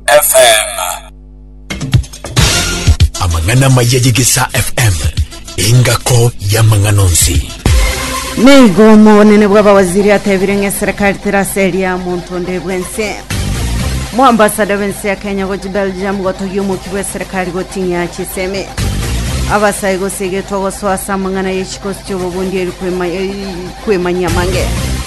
FM. Amang'ana amaya y'Egesaa FM, engako y'amang'ana onsi. Nigo omonene bw'abawaziri atebire ng'a eserekari teraseria monto onde bwense moambasada b'ense ya kenya gochi belgium gotogia omoki bw'eserekari goting'ia chisemi abasae gose egetwa gosoa ase amang'ana y'echikosi chi'obobundi eri kwema- eri kwemanyia mange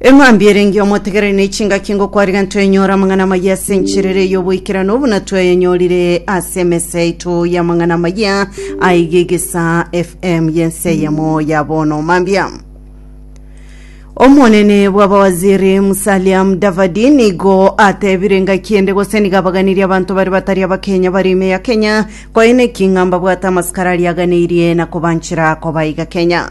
Eng'ambi erenge omotegereri ne chingaki ngokwariga ntwenyora amang'ana amaya ase encherere y'oboikeranu buna tweyenyorire ase emesa yaito y'amang'ana amaya aiga egesa FM y'ense eyemo ya bono mambia. Omonene bw'abawaziri Musalia Mudavadi nigo atebire engaki ende gose nigo abaganirie abanto bare batari abakenya bari ime ya Kenya koene eking'amba bwate amasikara ariaganeirie na kobanchera kobaiga Kenya.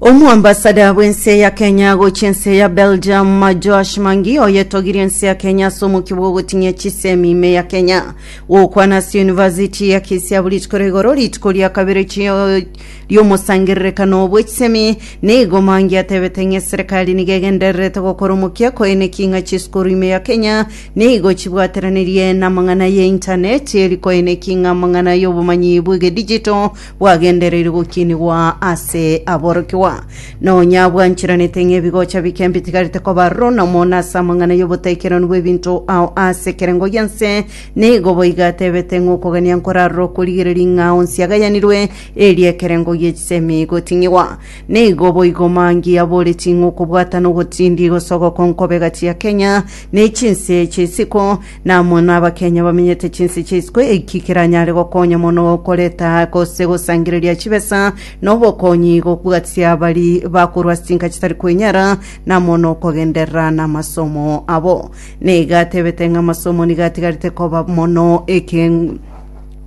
Omoambasada bw'ense ya Kenya gochia ense ya Belgium Josh Mangi oyetogirie ense ya Kenya ase omokia bw'ogoting'ia chisemi ime ya Kenya gokwana ase University ya Kisiabu rituko rigoro rituko ria kabere chio- riomosangererekano bwe chisemi nigo Mangi atebete ng'a eserekari nigo egendererete gokora omokia koeneki ng'a chisukuru ime ya Kenya nigo chibwateranerie namang'ana ye intaneti eri koeneki ng'a amang'ana y'obomanyi bw'egedijito bwagendereire gokinigwa ase aborokigwa, nonya bwanchiranete ng'ebigocha bike mbitigarete koba runa mono ase amang'ana y'obotekeranu bw'ebinto ao ase ekerengo gi'ense, nigo boigo atebete ng'okogania nkorarora okorigereria ng'a onsi agayanirwe, erio ekerengo gie chisemi igoting'igwa. Nigo boigo Mangi aboreti ng'okobwatana ogotindi igosogoka onkobega chia Kenya ne chinse ch'isiko, Namono abakenya bamenyete chinse chia isiko eki keranyare gokonya mono koreta gose gosangereria chibesa na obokonyi gobwatia bari bakorwa ase chinka chitari kwenyara namono kogenderera namasomo abo. Nigo atebete ng'a amasomo nigo atigarete koba mono eke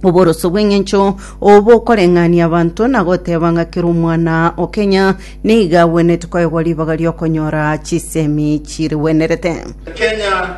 oboroso bw'eng'encho obokoreng'ania abanto na goteba ng'a kera omwana o Kenya nigo agwenerete koegwa ribaga ri'okonyora chisemi chirigwenerete. Kenya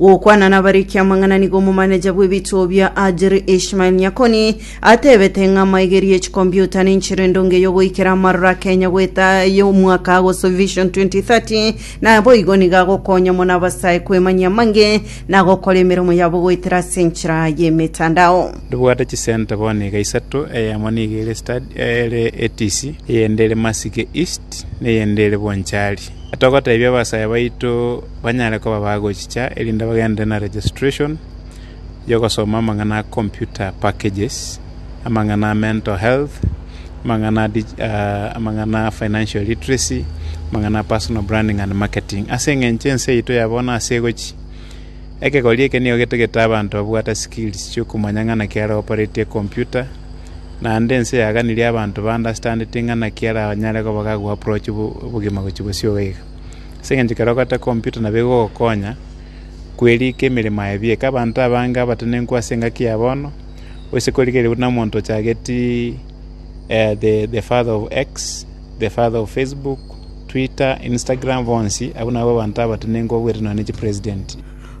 Gokwana nabarekia amang'ana nigo omomaneja bw'ebitobia Adjiri Ishmael Nyakoni atebete ng'a amaigerio y'echikompiuta nenchera endonge y'ogoikera amaroro a Kenya goeta y'omwaka agosu Vision 2030 naboigo nigo agokonya mono abasae kwemanyia amange na gokora emeremo yabo goetera ase enchera y'emetandao. Ndibwate chisenta bono iga isato, eyemo nigo ere Stadi, ere Etisi, eyende ere Masike East, na eyende ere Bonchari. Togoteebia abasaya baito banyare koba bagochicha erinde bagenderere na registration y'ogosoma amang'ana a computer packages, amang'ana a mental health, amang'ana a dig- ah, amang'ana a financial literacy, amang'ana a personal branding and marketing. Ase eng'encho ense yaito ya bono ase egochi ekegori eke nigo getagete abanto babwate skills chiokomanya ng'a naki aropareti ecomputer, Naende ense yaganirie abanto bandastandeti ng'a naki aranyare koba gagoaprochi obogima gochia gosioka iga. Ase eng'encho ekero ogotee kompyuta nabo egogokonya kwerika emeremo yaye bieka. Abanto abange abatenenku ase engaki ya bono, oise korigereria buna omonto ochageti the father of X, the father of Facebook, Twitter, Instagram bonsi abwo nabo abanto abatenenku babwate nonya ne chipresident.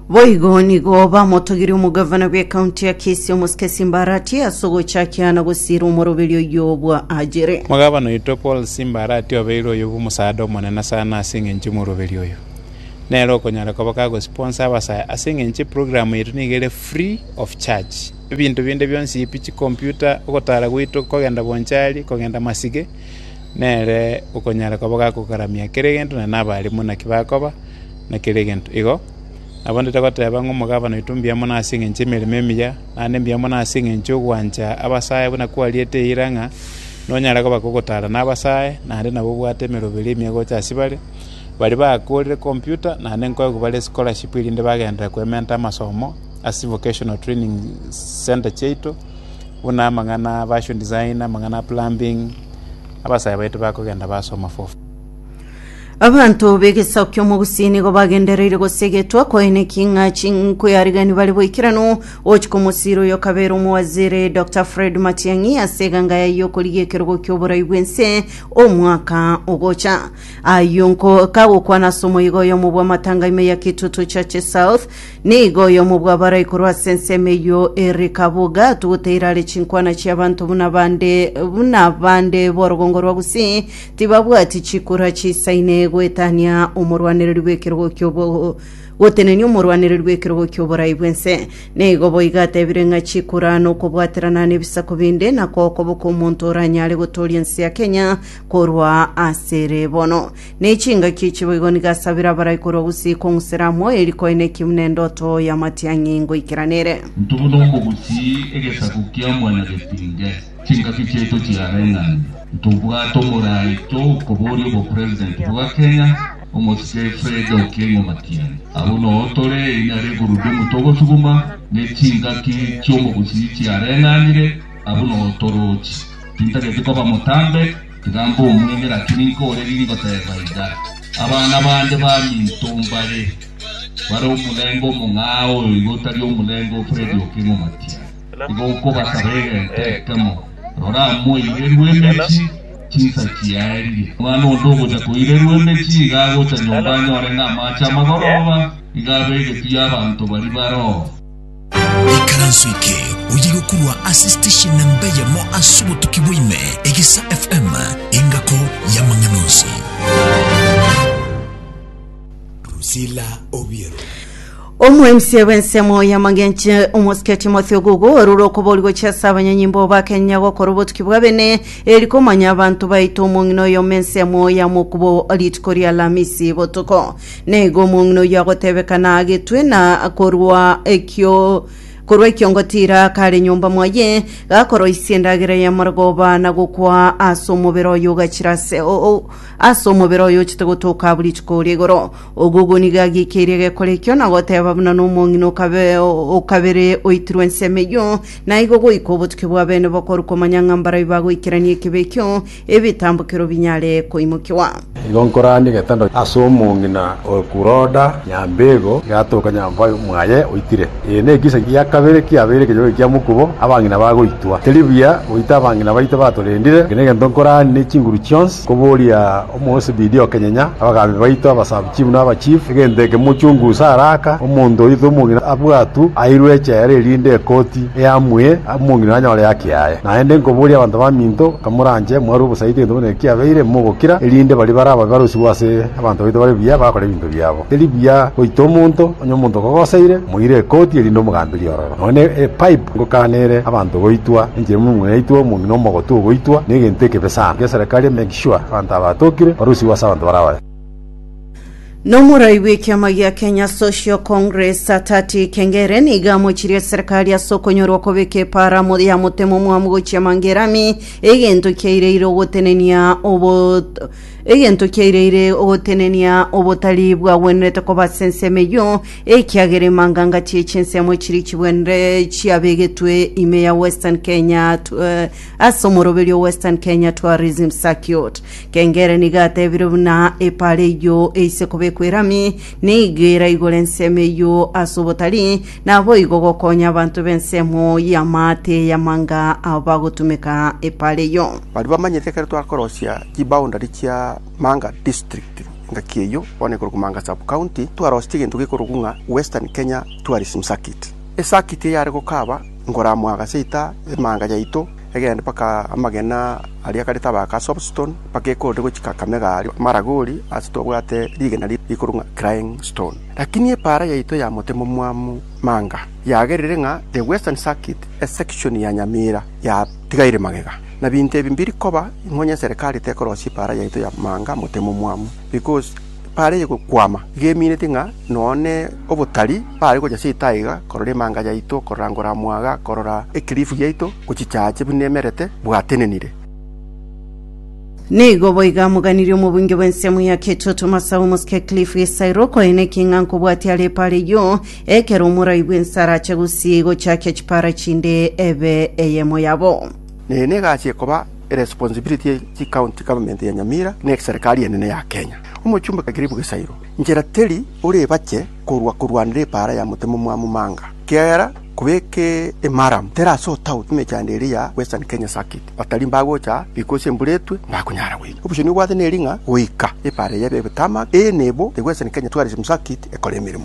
Boigo nigo bamotogirie omogavana bw'ecounty ya Kisii omosike Simba Arati ase ogochakia na gosiira omoroberio oyio bwa Ajiri. Omogavana oito Paul Simba Arati obeire oyo bw'omosaada omonene sana ase engencho y'omoroberio oyo. Nere okonyara koba kagosiponsa abasaya ase engencho eprogram yaito nigo ere free of charge. Ebinto binde bionsi pi chicomputer, ogotara gwaito kogenda bonchari, kogenda masige, nere okonyara koba gakogaramia kera egento na nabarimu naki bakoba, na kera egento. Igo nabande togoteba ng'a omogabana oito mbuya mono ase engencho y'emeremo emiya, naende mbuya mono ase engencho y'ogwancha abasae buna kwariete eira ng'a nonyare koba gogotaara nabasae, naende nabo obwate emeroberi emiya gocha ase bare, baria bakoorire computer naende nkoegwe bare scholarship erinde bagenderere koementa amasomo ase vocational training centre chiaito, buna amang'ana a fashion design, amang'ana a plumbing, abasae baito bakogenda basoma fofo. Abanto b'egesaku ki'omogusii nigo bagendereire gosegetwa koene king'a chinkuyarigani bare boikeranu gochia komosiri oyo kabere omowaziri Dr Fred Matiang'i ase eganga yaye y'okorigia ekerogo ki'oborai bw'ense omwaka ogocha ayio nko kagokwana ase omoigo oyomo bw'amatanga ime ya Kitutu Chache South nigo oyomo bw'abarai korwa ase ensemo eyio Eric Kabuga atugoteire are chinkwana chi'abanto buna bande buna bande b'orogongo rwa gusii Tibabwati chikura chiisaine goetania omorwanereri bw'ekerogo ki'obo gotenenia omorwanereri bw'ekerogo ki'oborai bw'ense. Nigo boigo atebire ng'a chikura nokobwaterana nebisaku binde na kokoboka omonto oranyare gotooria ense ya Kenya korwa asere bono. Nechingaki echi boigo nigo asabire abarai korwa gusii kong'usera amo eri koina eki buna endoto y'amatiang'i ngoikeranere. Intwe buna omogusi egesaku kia mwana getinge. Chingaki chiaito chiareng'ane, ntobwate omoraito okoboria obopresident bwa Kenya, omosike Fred Okengo Matiang'i. Abwo noo tore eina regurudumu togosuguma, ne chingaki chiomogusii chiareng'anire, abwo noo torochi. Tintageti koba motambe, tiga mbomwenge naki ninke ore ringoteba iga. Abana bande baminto mbare bare omorenge omong'ao oyo iga otari omorenge o Fred Okengo Matiang'i. Igo nkobasaba egento ekemo, rora, moirerwe emechie, chinsa chiaerire. Omwana onde ogocha koirerwa emechie iga agocha nyomba anyore ng'a amaache amagoroba iga abegetwe y'abanto baria baroo. Ikaranso eke oye gokorwa ase station namba eyemo ase obotuki bwa ime, Egesa FM, engako y'amang'ana onsi. Priscilla Obiero. Omwensia bw'ensemo y'amagenche omosike Timothy Ogugu orure okobori gochia ase abanyonyi mbo bakenya gokora obotuki bwa bene eri komanya abanto baito omong'ina oyomo ensemo ya mokubo rituko ria Alamisi botuko. Naigo omong'ina oyio agotebekana agetwe na korwa ekio korwa ekiongotira kare nyomba mwaye gakoroisia endagera y'amarogoba na gokwa ase omobere oyo ogachira ase o- o- Ase omobere oyo ochete gotoka buri rituko oria igoro, ogugu nigo agiikeirie egekore ekio na goteeba buna nomong'ina okabe o kabere oitirwe ensemo eyio, na igo goika obotuki bw'abeene bokoru komanya ng'a mbarai bagoikerania ekibe ekio, ebitambokero binyare koimokiwa. Igo nkoranie getanda ase omong'ina o Kuroda. Nyambego igatoka nyomba mwaye oitire. Eye nekisaku kia kabere kiabeire ekenyoro ekia mokubo, abang'ina bagoitwa. Teri buya goita abang'ina baito batorendire, gaki negento nkorani ne chinguru chionsi, koboria Omoesibidia okenyenya, abagaambi baito, abasabuchifu, na abachifu, egento eke mochungusa araka, omonto oito omong'ina abwatu airwe echela erinde ekoti eamuye omong'ina anyore haki yaye. Naende nkoboria abanto baminto, kamoranche mwarwe obosaiti egento buna eki kiabeire, mogokira, erinde baria barababe baroisigwe ase abanto baito bare buya, bagakora ebinto biya. biabo. Teri buya goita omonto onye omonto okogoseire moire ekoti erinde omogambi riororo, nonye ne epipe ngokana ere abanto goitwa enchera ime omong'ina aitwe omong'ina omogotu ogoitwa negento ekebe sana. Geserekari make sure abanto aba batokire barusigwe ase abanto barabaye. Nomorai bw'ekiama gia Kenya Social Congress Satati Kengere nigo amochirie eserekari ase okonyorwa kobeka eparamo ya motemo omwamu gochia Mangerami egento kiaireire ogotenenia obo Egento kiaireire ogotenenia obotari bwagwenerete koba ase ensemo eyio, ekiagera emanganga chie chinsemo chiri chigwenire chiabegetwe ime ya Western Kenya tu- eh, ase omoroberio Western Kenya Tourism Circuit. Kengere nigo atebire buna epaara eyio eise kobekwa erami, nigo eraigore ensemo eyio ase obotari, naboigo gokonya abanto b'ensemo y'amaate y'amanga abagotumeka epaara eyio. Baria bamanyete ekero twakorosia chiboundary chia Manga District, engaki eyio bono ekorokwa Manga Sub-County, twarosetie egento gekorokwa ng'a Western Kenya Tourism Circuit. Esakiti eye yare gokaba nkoramwa gaseita emanga yaito egende mpaka amagena aria kare tabaga ka Soapstone mpaka ekorire gochia Kakamega aria Maragoli ase twabwate rigena riria rikorwa ng'a Crying Stone. Lakini epaara yaito ya motemo omwamu Manga yagerire ng'a The Western Circuit esection ya Nyamira ya Tiga ere magega, na binto ebi mbiri koba, ing'onya eserekari tekorosia epaara yaito ya manga motemo omwamu, because epaara eye egokwama, iga emineti ng'a nonya ne obotari bare gocha ase etaiga korora emanga yaito, korora ngoramwaga, korora ekelifu giaito gochichache buna emerete bwatenenire. Nigo boiga moganirie omobunge bw'ensemo ya Ketoto Masawe Mosike Cliff Isairo, okoenekia ing'a nkobwatia are epaara eyio, Ekero omorai bw'ensara ache gosii gochakia chipara chinde ebe eyemo yabo. Neye nigo aachie koba eresponsibility ye chi county government ya Nyamira na eserikari enene ya Kenya. Omochumbe Kagiribu Gesairo inchera teri orebache korwa korwanera epaara ya motemo mwa Mumanga kiagera kobeka emaramu teri ase otout emechando eria ya Western Kenya Circuit batari mbagocha riko ase embura etwe mbakunyara goika. Obuya nibwate neri ng'a goika epaara eye ebe ebe tarmac eye nibo the Western Kenya Tourism Circuit ekore emeremo.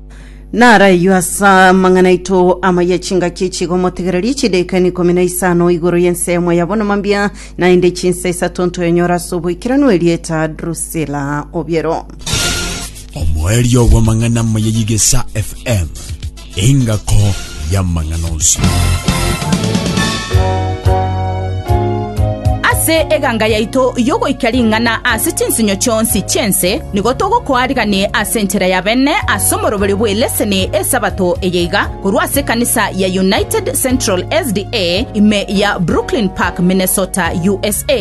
Naraywo ase amang'ana aito amaya chingaki echigo motegererie chidaika na ikomi na isano igoro y'ensemo ya bono mambia naende chinsa isato ntoyonyora ase oboikeranu erieta Drusilla Obiero. omoerio bw'amang'ana amaya y'egesa fm engako y'amang'ana onsi. Ase eganga yaito y'ogoikia ring'ana ase chinsinyo chionsi chi'ense nigo togokoariganie ase enchera ya bene ase omoroberio bw'eleseni Esabato eye iga, korwa ase ekanisa ya United Central SDA ime ya Brooklyn Park, Minnesota, USA.